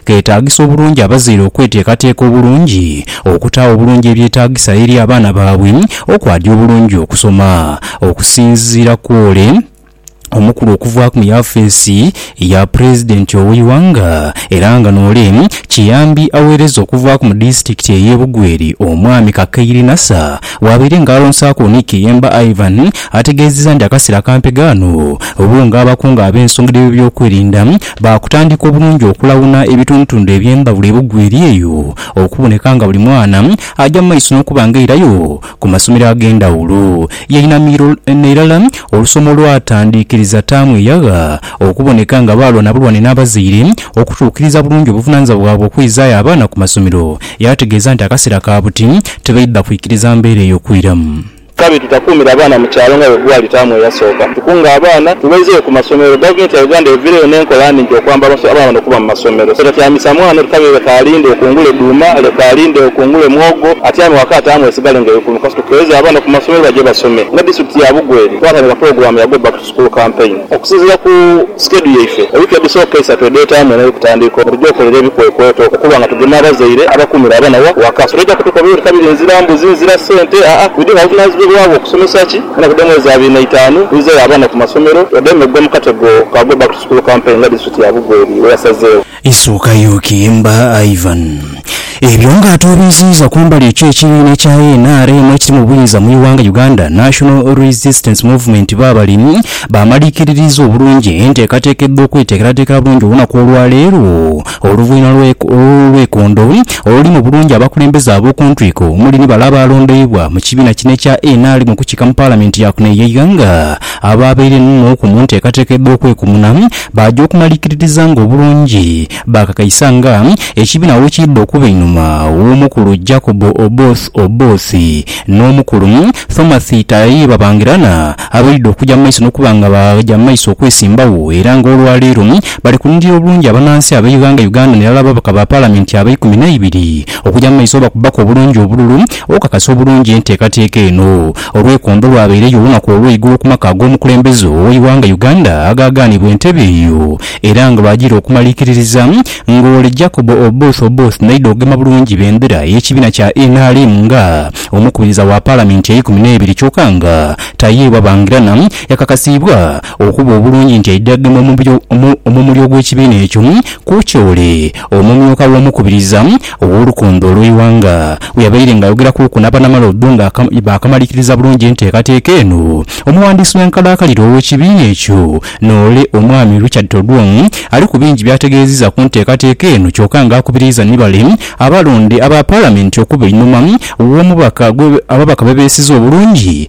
keetaagisa obulungi abazaire okweteekateeka obulungi okutaawo obulungi ebyetaagisa eri abaana baabwe okwadi obulungi okusoma. Okusinziira ku ole omukulu okuvaaku mu yafeesi ya Pulezidenti ow'eighanga era nga n'ole kiyambi aweereza okuvaaku mu disitulikiti ey'e Bugweri, Omwami Kakaire Nasser bwabaire nga alonsaaku Onik Kiyemba Ivan ategeezezza nti akaseera kampe ghano obuunga abakungu ab'ensonga dh'ebyokwerinda Baakutandika obulungi okulawuna ebitundutundu eby'embabula ebugwa eri eyo, okuboneka nga buli mwana aja mu maiso n'okuba nga airayo ku masomero ag'endhawulo yainamiro nairala olusoma olwatandikiriza taamu eyagha, okuboneka nga baalwa na bulwane n'abazaire okutuukiriza bulungi obuvunaanyizibwa bwabwe okwizaayo abaana ku masomero, yaategeeza nti akaseera ka buti tibaidha kwikiriza mbeera eyo kwiramu. Kabi tutakuumire abaana mu kyalo nga bwe gwali taamu eyasooka. Tukunge abaana tubaizeyo ku masomero. Gavumenti ya Uganda eviireyo n'enkola nhingi okwamba abaana bano okuba mu masomero. So tatyamisa mwana oti kabi leka alinde okungule dhuuma, leka alinde okungule mwogo, atyame waka taamu esigale ng'eri kulumu. Kasita tukeeza abaana ku masomero baje basome. Nga disitulikiti ya Bugweri twatandika pulogulaamu ya Go Back to. School Campaign. Okusinziira ku skedhu yaife, ewiiki edhisooka eisatu edheetaamu eno ey'okutandiika omwaka, tugya okolera ebikwekweto okuba nga tugema abazaire abakuumira abana wa waka. So toija kutukobera oti kabiri nzira mbuzi, nzira sente, aa, we do have obuvunaanyizibwebwa bwo kusomesa ki mwana kudemu mwezi abiri na itaanu, wizeyo abana ku masomero, wademu ogwa mu katego ka Go Back to School Campaign nga District ya Bugweri bweyasazeewo. Isuukayo Kiimba Ivan. Ebyo nga atoobeziiza kumbali ekyo ekibiina ekya nrm ekiri mu buyinza mu ighanga Uganda National Resistance Movement bwebali bamalikiririza obulungi enteekateeka edh'okweteekerateekera bulungi olunaku olwaleero oluvanhuma lw'olwekondo oluli mu bulungi abakulembeze ab'okuntwiko omuli ni bale abaalondoibwa mu kibiina kino ekya nrm okukiika mu palamenti yaakuno eyeighanga abaabaire n'oku mu nteekateeka edh'okwekumuna Baaja okumalirkirizanga obulungi, baakakaisa nga ekibiina bwe kiidha okuba einhuma w'omukulu Jacob Oboth Oboth n'omukulu Thomas Tayai Babangirana abaidha okuja mu maiso n'okuba nga baaja mu maiso okwesimbagho era nga olwa leero bali kuninira obulungi abanaansi ab'eighanga Uganda n'irala ababaka ba Palamenti abaikumi n'eibiri okuja mu maiso bakubaku obulungi obululu okukakasa obulungi enteekateeka eno. Olweikondo lwabaireyo olunaku olweigulo ku maka ag'omukulembeze oweighanga Uganda agaagaanibwa entebe eyo era nga lwajiire okumalikiririza nga ole Jacob Oboth Oboth naidha okugema bulungi bendera y'ekibiina kya nrm nga omukubiriza wa palamenti eikumi neibiri kyoka nga tayeebwa bangirana yakakasiibwa Okuba obulungi nti aidha gema omumuli ogw'ekibiina ekyo ku Chole, omumyuka w'omukubiriza ow'olukondo olw'eighanga bweyabaire nga ayogera kuku n'abanamala odho nga baakamalikiriza bulungi enteekateeka eno, omuwandiisi w'enkalakalira ow'ekibiina ekyo Noole Omwami Richard Todwong ali ku bingi by'ategeeziza ku nteekateeka eno kyoka nga akubiriiza ni bale abalonde aba Palamenti okuba einhuma w'omubaka ababaka bebeesize obulungi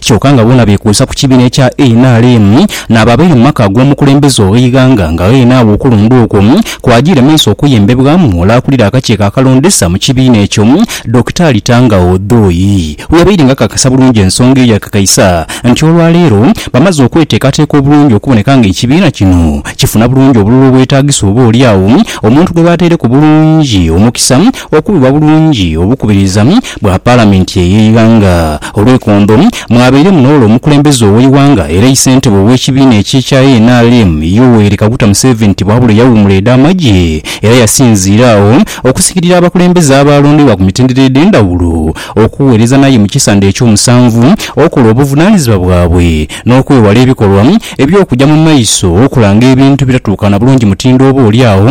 kyoka nga boona beekwesa ku kibiina ekya nrm n'abo abaire mu maka ag'omukulembeze ow'eighanga nga ghene agho okulonda okwo kwajiire mu maiso okuyembebwamu mu ole akulira akakiiko akalondesa mu kibiina ekyo Dokitaali Tanga Odoi bweyabaire nga akakasa bulungi ensonga eyo yakakaisa nti olwaleero bamaze okweteekateeka obulungi okuboneka nga ekibiina kino kifuna bulungi obululu obwetaagisa oba olyagho omuntu gwebataireku bulungi omukisa Okubibwa bulungi obukubiriza bwa Palamenti ey'eighanga olweikondo, mwabairemu n'ole omukulembeze ow'eighanga era eisentebe ow'ekibiina ekye ekya nrm Yoweri Kaguta Museveni tibwabula eyawuumula edha magye era yasinziira agho okusikirira abakulembeze abaalondeibwa ku mitendera edhendhawulo okuweereza naye mu kisandhe eky'omusanvu okola obuvunanizibwa bwabwe n'okwewala ebikolwa eby'okugya mu maiso okulanga ebintu ebitatuukana bulungi mutindo oba oli agho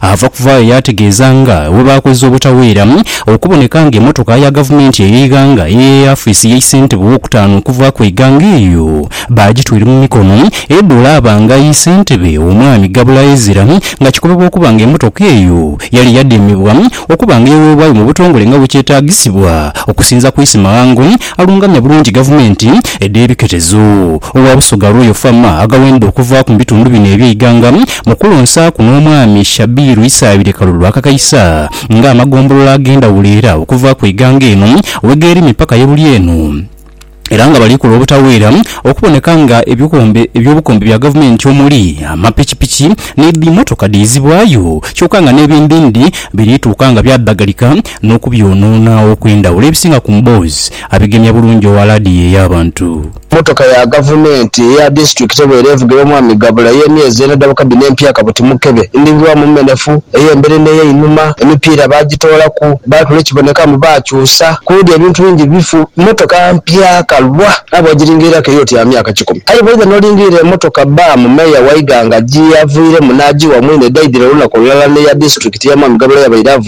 Ava kuvaayo yaategeeza nga bwe baakoze obutaweera okuboneka nga emotoka ya gavumenti ey'eighanga ey'e afiisi y'e ssentebe ow'okutaano okuvaaku eighanga eyo baagitwire mu mikono edhula abanga ye ssentebe omwami Gabula Ezra nga kikobebwa okuba nga emotoka eyo yali yademebwa okuba nga eweebwayo mu butongole nga bwe kyetaagisibwa okusinza ku Isimahango Alungamya bulungi gavumenti edh'ebiketezo. Owa Busoga Royal Farm aghawendha okuvaaku mu bitundu bino eby'eighanga mu kulonsaaku n'Omwami Shabiru Isaabire Kalulu akakaisa nga amagombolola ag'endhawulo era okuva ku eighanga eno wegeeri mipaka ye buli eno era nga bali kola obutaweera okuboneka nga eby'obukombe bya gavumenti omuli amapikipiki n'edhimotoka dhiizibwayo kyoka nga n'ebindhindhi biri tuuka nga byadhagalika n'okubyonoona okw'endhawulo ebisinga ku mboozi abigemya bulungi owa laadiyo ey'abantu. Mmotoka ya Gavumenti eya disitulikiti ebeera evugirwa Omwami Gabula ey'emyezi ena edhabuka dhino empya kabuti mukebe, ndhingirwamu mmenefu, ey'emberi n'ey'einhuma, emipiira baagitoolaku, baatula ekiboneka mbu baakyusa, ku ludi ebintu bingi bifu. Mmotoka mpya kalwa aye bw'ogiringiriraku eri oti ya myaka kikumi. Aye bw'oidha n'olingirira emotoka bbaamu Meeya Waighanga gye yavairemu n'agiwa mwine edhaidhira olunaku olulala n'eya disitulikiti eya Mwami Gabula yabaire avugirwa,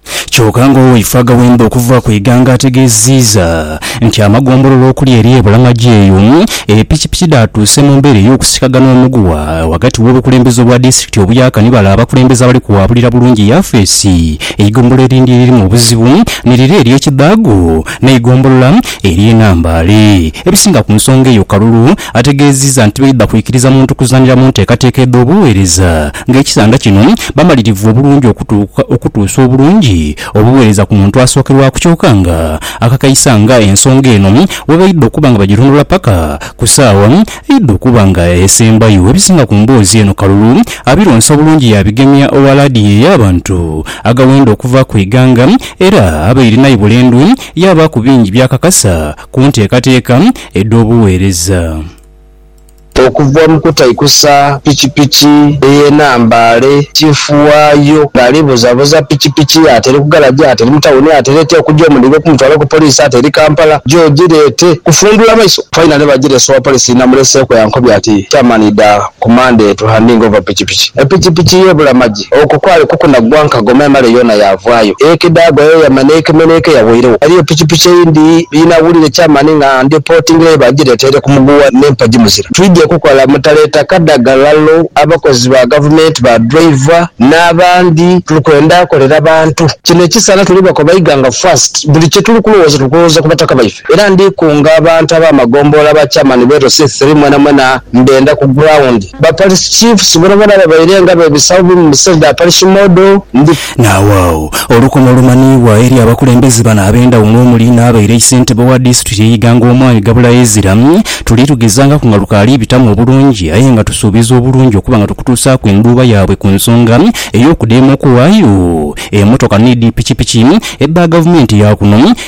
Kyoka nga owaifo agaghemba okuva ku Iganga ategeziiza nti amagombolola okuli erye e Bulamagi eyo e pikipiki dhaatuuse mu mbeera ey'okusikagana omuguwa ghagati w'obukulembeze obwa disitulikiti obuyaaka ni bale abakulembeze abali kuwaabulira bulungi yafeesi eigombolola erindi eririmu obuzibu ni lire erye Kidhago n'eigombolola erye Nambaale. Ebisinga ku nsonga eyo Kalulu ategeziiza nti baidha kwikiriza muntu kuzanira mu nteekateeka edh'obuweereza Ng'ekisanga kino bamalirivu obulungi okutuuka okutuusa obulungi obuweereza ku muntu asookerwaku kyoka nga akakaisa nga ensonga eno bwebaidha okuba nga bagirondoola paka ku saawa eidha okuba nga esembayo. Ebisinga ku mboozi eno Kalulu abironsa bulungi yaabigemya owa laadiyo ey'abantu agawenda okuva ku ighanga era abaire naye bulendwe yaabaaku bingi by'akakasa ku nteekateeka edh'obuweereza. Okuva mu kutaikusa pikipiki eye Nambaale, Chiifu waayo ng'ali buzabuza pikipiki ye ati eri ku garaji, ati eri mu tawuni, ati leete okugya omuliga okumutwala ku poliisi, ati eri Kampala, gye ogireete. Kufundhula maiso, faina ni bagireese owa poliisi namuleeseeku yankobya ati, Chairman idha ku Monday to handing over pikipiki. Epikipiki ye ebula magi. ati, Okwo kwali kukunaggwa nkagoma emale yoona yaavwayo. Ekedha agwa yeeyama n'ekemenheeka eyabweiregho. Ghaliyo pikipiki eyindi ye naawulira eky'amaani nga ndhipotingireyo baagiretaire ku muguwa n'empagi muzira. Twidhye kukola mutaleeta kadhagalalo, abakozi ba Gavumenti, ba driver n'abandi. Tuli kwenda kolera bantu. Kino ekisaala tuli bakoba Iganga First. Buli kye tuli kulowooza tuli kulowooza ku bataka baife. Era ndi kunga abantu ab'amagombolola, ba Chairman b'e Rosith Three mwenamwena mbenda ku ground. Ba Parish Chiefs bonabona babaire nga bebisagho bubi mu bisenge bya Parish Model ndi. Naawagho olukomo olumanhiibwa eri abakulembeze bano ab'endhawulo omuli n'abaire eisentebe wa disitulikiti y'e Iganga Omwami Gabula Ezira. Tuli tugezangaku nga lukaali bitamu obulungi aye nga tusuubiza obulungi okuba nga tukutuusaaku endhuuba yaabwe ku nsonga ey'okudeema okuwaayo emotoka ni dhi pikipiki edha gavumenti ya kuno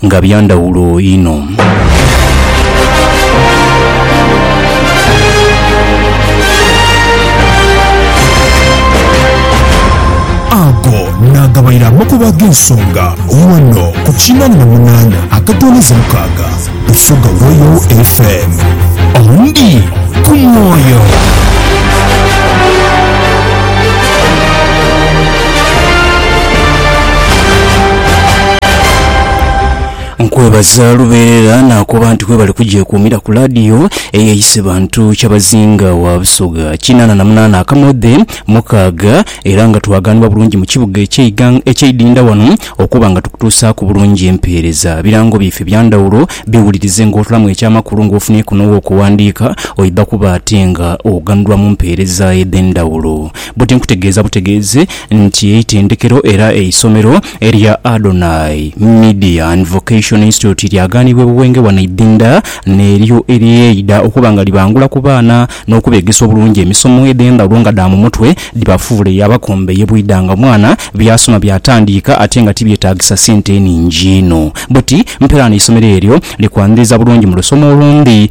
Nga bya ndhawulo inho. Ago naagabaire amakubo ag'ensonga ghano ku kinaana na munaana akatooleza mukaaga Busoga Royal FM. Ondi ku mwoyo. Nkwebaza lubeerera nakoba nti kwebale kugyekuumira ku laadiyo eyeyise bantu kyabazinga wa Busoga kinaana na munaana akamodhe mukaaga era nga twagaanibwa bulungi mu kibuga eky'eighang- eky'eidinda wano okuba nga tukutuusaaku bulungi empeereza. Birango byaife bya ndhawulo biwulirize ng'otulamu eky'amakulu ng'ofunyeeku n'ow'okuwandiika oidha kuba ate nga oghanulwa mu mpeereza edh'endhawulo. Buti nkutegeeza butegeezi nti eitendekero era eisomero erya Adonai Midian Vocation Institute lyagaanibwa e Buwenge wano Idinda n'eryo eryeidha okuba nga libangula ku baana n'okubeegesa obulungi emisomo edh'endhawulo nga dha mu mutwe dhibafuule yaabakomba eye bwidha nga omwana byasoma byatandiika ate nga tibyetaagisa sente nhingi inho. Buti mperaano eisomero eryo likwanhiriza bulungi mu lusoma olundhi.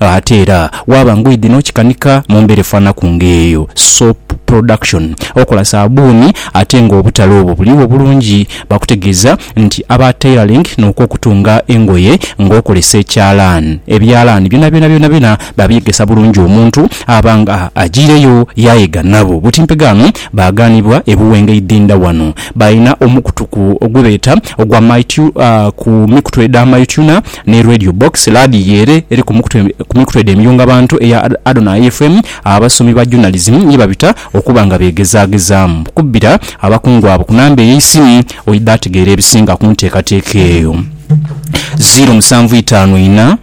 Ate era waaba ngoidhi n'okikanika mu mbeera efaanaku ng'eyo, soap production, okola saabbuuni ate ng'obutale obwo buliwo bulungi, bakutegeeza nti aba tailoring n'okw'okutunga engoye ng'okozesa ekyalaani, ebyalaani byonabyona byonabyona babyegesa bulungi omuntu aba nga ajaireyo yaayega nabo. Buti mpegaano baagaanibwa e Buwenga eidhindha wano. Balina omukutu ku ogwebeeta ogwa My Tuna ku mikutu edha My Tuna Ni Radio Box, laadiyo ere eri ku mikutu ku mikutu edho emiyunga bantu eya Adonai FM, abasomi ba journalism ye babita okuba nga beegezaagezaamu okubbira abakungu abo ku namba ey'eisimu. Oidha ategeera ebisinga ku nteekateeka eyo. Ziiro musanvu itaanu ina,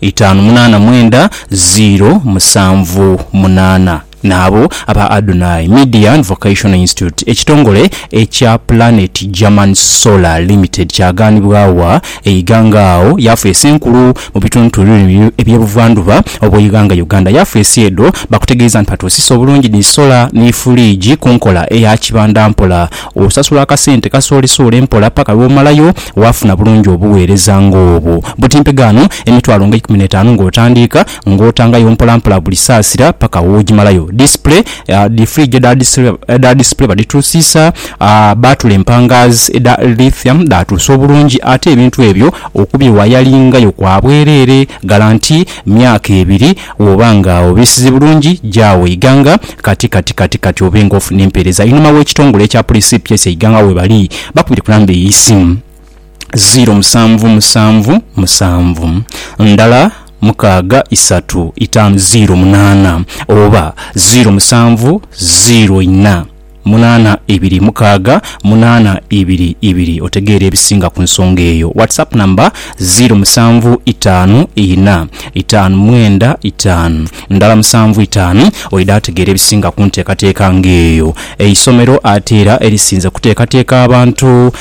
itaanu munaana mwenda, ziiro musanvu munaana. N'abo aba Adonai Median Vocational Institute, ekitongole ekya Planet German Solar Limited kyagaanibwa wa e Iganga agho yafeesi enkulu mu bitundtulu bino eby'e Buvandhuba obw'eighanga Uganda. Yafeesi edho bakutegeeza nti batuusisa obulungi ni sola ni fuliigi ku nkola eya kibanda mpola. Osasula akasente kasoolesoole mpola paka lw'omalayo waafuna bulungi obuweereza ng'obwo. Butimpegaano emitwalo nga eikumi n'etaanu ng'otandiika. ng'otangayo mpolampola buli saasira paka w'ogimalayo. Disipule, Dhi fridge edha disipule badhituusiisa, baatula empangaazi edha lithium dhaatuusa obulungi ate ebintu ebyo okubyewayalingayo kwa bwereere. Galanti myaka ebiri bw'oba nga obiisize bulungi gya Weiganga kati kati kati kati obe ng'ofuna empeereza. Einhuma w'ekitongole ekya Police CPS Eiganga webali bakubire ku namba ey'eisimu. ziro musanvu musanvu musanvu ndala mukaaga isatu itaanu ziro munaana oba ziro musanvu ziro inha munaana ebiri mukaaga munaana ibiri ibiri otegeere ebisinga ku nsonga eyo. WhatsApp number ziro musanvu itaanu inha itaanu mwenda itaanu ndala musanvu itaanu oidha ategeera ebisinga ku nteekateeka nga eyo. Eisomero ate era erisinze kuteekateeka abantu.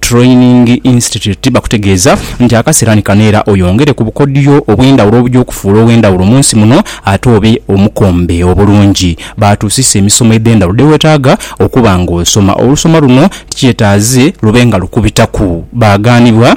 Training Institute bakutegeeza nti akaseera ni kano era oyongere ku bukodyo obw'endhawulo obuja okufuula ow'endhawulo mu nsi muno ate obe omukombe obulungi. Baatuusisa emisomo edh'endhawulo dhe weetaaga okuba ng'osoma. Olusoma luno tikyetaaze lube nga lukubitaku baagaanibwa.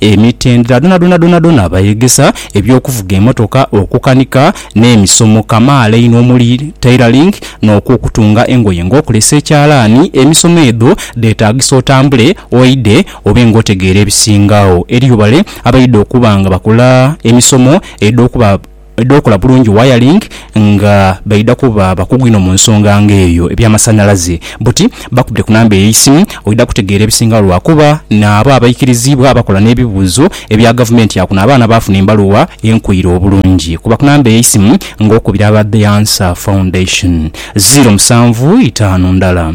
emitendera dhonadhona dhonadhona bayegesa eby'okuvuga emotoka, okukanika n'emisomo kamaala einho omuli tailoring n'okw'okutunga engoye ng'okulesa ekyalaani. Emisomo edho dheetaagisa otambule oidhe obe ng'otegeera ebisinga agho. Eriyo bale abaidha okuba nga bakola emisomo edh'okuba. edh'okola bulungi wayalingi nga baidha kuba bakugu inho mu nsonga nga eyo eby'amasanhalaze. Buti bakubire ku namba ey'eisimu oidha kutegeera ebisingawo lwa kuba naabo abaikiriziibwa abakola n'ebibuuzo ebya Gavumenti ya kuno abaana baafuna embaluwa enkoire obulungi. Kuba ku namba ey'eisimu ng'okubira aba The Answer Foundation, ziiro musanvu itaanu ndala.